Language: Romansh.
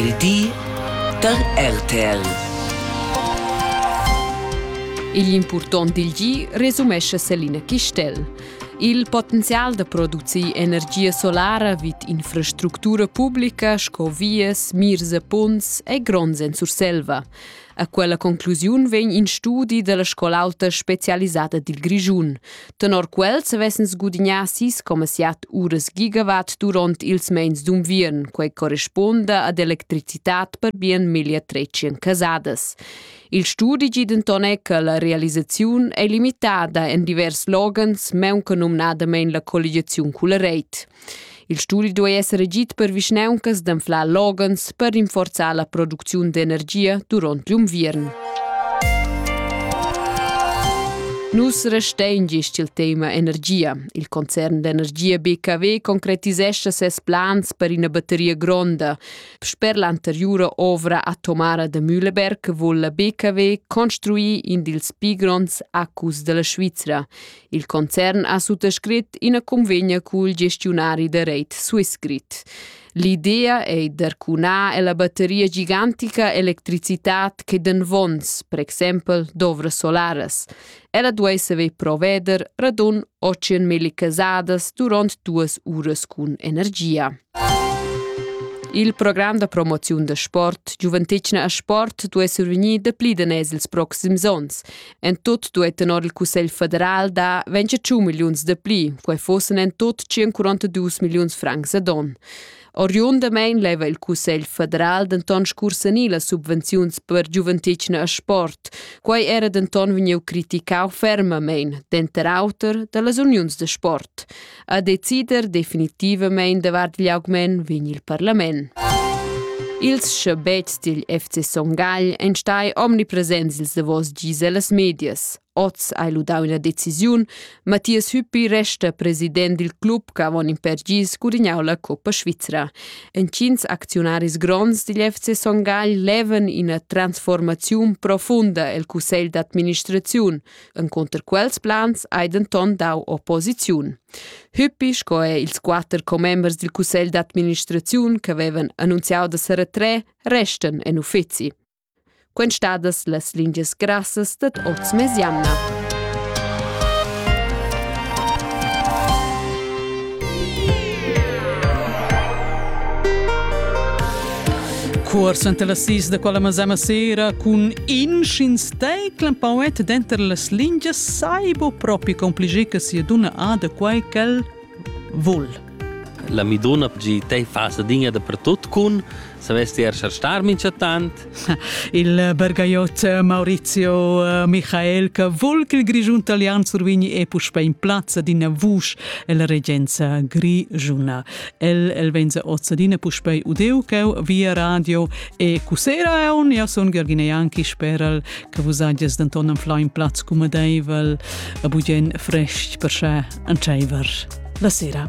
Il di da RTL. Igl impurtont dil gi resumescha Selina Chistel. Il potenzial da producir energia solara vid infrastructura publica sco vias, mirs e punts è gronds en Surselva. A quella conclusiun vegn in studi dalla scol'auta specialisada dil Grischun. Tenor quel savessan sgudignar sis coma siat uras gigawatt durant ils meins d'unviern, quei corresponda ad electricitad per bien miglia 300 casadas. Il studi gi denton è che la realisaziun è limitada en divers loghens, meunca numnadamein la colligiaziun culla reit. Il studi duei esser agid per vischnauncas d'anflar loghens per rinforzar la producziun d'energia duront gl'unviern. Nus restein gist il tema energia. Il concern d'energia BKW concretisescha ses plans per ina batteria gronda. Sper l'anteriura ovra atomara da Mühleberg vul la BKW construir in dils pli gronds acus della Svizra. Il concern ha suttascrit ina convegna cul gestiunari da reit Swissgrid. L'idea ei d'arcunar ella batteria gigantica electricitat che den vons, per exempel d'ovras solaras. Ella duei saver proveder radun 800.000 casadas durant duas uras cun energia. Il program da promoziun da sport Giuventetgna a sport duai survegnir dapli daners ils proxims onns. En tut duei tenor il Cussegl federal da 25 milliuns de pli, quei fossen en tut 142 milliuns francs ad on. Oriundamein leva il Cussegl federal denton scursanir las subvenziuns per giuventetgna e sport. Quei era denton vegniu criticau fermamein, denter auter, dallas uniuns de sport. a decider definitivamein davart igl augment vegn il parlament. Ils schabets dil FC Son Gagl ein stai omnipresents ils davos gis ellas medias. Oz hai lu dau ina decisiun. Mathias Hüppi resta president dil club che avon in per gis gudignau la Coppa Svizra. Entgins acziunaris gronds digl FC Son Gagl levan ina transformaziun profunda el cussegl d'administraziun, Encunter quels plans hai denton dau opposiziun. Hüppi sco è ils quatter commembers dil cussegl d'administraziun che vevan annunziau da seretre restan en uffizi. Quen stadas las lingias grassas dat oz mez jamna. Cuors enta las sis da quella masema sera cun inschins Tei clampauet denter las lingias sai bo propi compliger che sia dunna ha da quai ch'el vul. La mi donna pgi tei fasa dinga da pertot cun, savesti er star mincha tant? Il bergaiot Maurizio eh, Michael che vul che il Grigiun Italian survigni e puspe in plazza d'ina vusch la regenza grigiuna. El el venza ozza d'ina puspei udeu cheu via radio E cussera aun, jau sun Gergine Janki, speral che vus hagies denton en flain plaz cumadeivel, a bugen frestg per sche entscheiver la sera.